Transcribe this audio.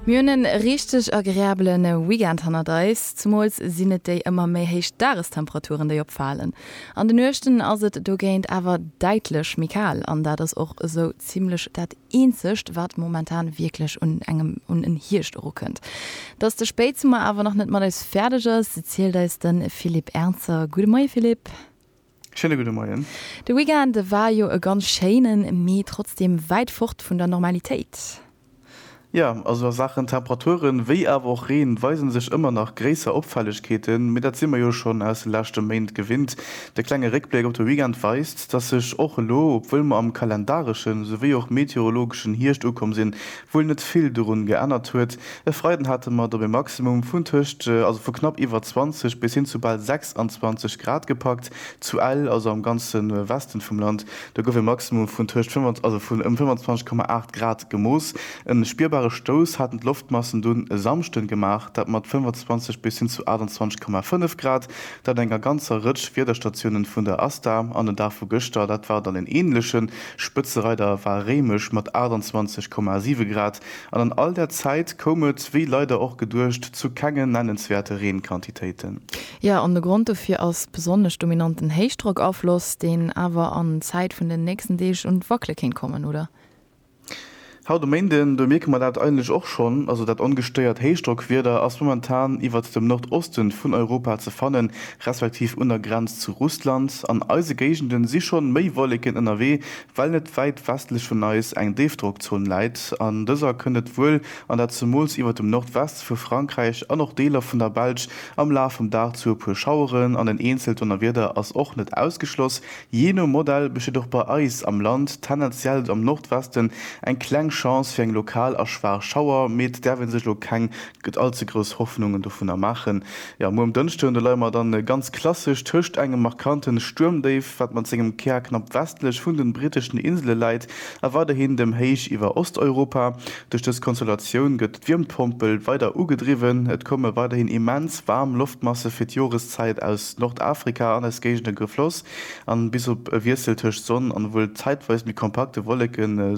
Mir hunn e richteg agreabele Weekend hannert eis. Zemools sinn et déi ëmmer méi héich Dagestemperaturen, déi opfalen. An de Nuechten ass et dogéint awer däitlech méi kal an dat ass och esou zimmlech dat eenzegt, wat momentan wierklech un engem un en Hierscht erukënnt. Dass de Spéitsummer awer nach net mat eis fäerdeg ass, zielt eis de Philippe Ernzer. Gudde Moie Philippe. Schéine gudde Moien. De Weekend war jo e ganz schéinen, mee trotzdeem wäit fort vun der Normalitéit. Jo, also a Saachen Temperaturen, wéi awer och Reen, weisen sech ëmmer nach gréisser Opfällegkeeten, mee dat si mer jo schonn aus de leschte Méint gewinnt. De klenge Réckbléck op de Weekend weist, dass sech och elo, obwuel mer am kalendareschen souwéi och meteorologeschen Hierscht ukomm sinn, wuel net vill dorun geännert huet. E Freiden hate mer et op e Maximum vun tëscht, also vu knapp iwwer 20 bis hin zu bal 26 Grad gepackt. Zu Ell, also am ganze Westen vum Land, do gouf e Maximum vun tëscht also vun ëm 25,8 Grad gemooss. E spierbare Stouss haten d'Loftmassen dunn e Samschden gemaach, dat mat 25 bis hin zu 28,5 Grad, dat enger ganzer Rëtsch Wiederstatiounen vun der ASTA an den Dag vu gëschter, dat war dann en ähnlechen, Spëtzereider war Réimech mat 28,7 Grad an an all der Zäit koum et, wéi leider och geduecht, zu kenge nennenswäerte Reenquantitéiten. Jo, an de Grond dofir ass besonnesch dominanten Héichdrockafloss, deen awer an Zäit vun den nächsten Deeg un d'Wackele kéint kommen, oder? Haut um Méinden, do mierke mer dat eigentlech och schonn, also dat ongestéiert Héichdrockwieder ass momentan iwwert dem Nordoste vun Europa ze fannen, respektiv un der Grenz zu Russland. An eise Géigenden si schonn méi Wolleken ënnerwee, well net wäit westlech vun eis eng Déifdrockzon läit. An dëser kënnt et wuel, an dat zemools iwwert dem Nordweste vu Frankräich an och Deeler vun der Belsch, am Laf vum Dag zu e puer Schaueren an en eenzelt Donnerwieder ass och net ausgeschloss. Jee no Modell besteet och bei eis am Land tendenziell am Nordwesten eng kleng Chance fir eng lokal a schwaach Schauer, mee et däerf ee sech elo keng all ze grouss Hoffnungen dovunner maachen. Jo, muer um Dënschden, do leie mer dann ganz klassesch tëscht engem markante Stuermdéif, wat mat sengem Kär knapp westlech vun de britteschen Insele läit, a weiderhin dem Héich iwwer Osteuropa. Duerch dës Konstellatioun gëtt. D'Wiermpompel weider ugedriwwen. Et komme weiderhin immens waarm Loftmasse fir d'Joreszäit aus Nordafrika an eis Géigende gefloss, an bis op e Wiessel tëscht Sonn an wuel zäitweis méi kompakte Wolleke soll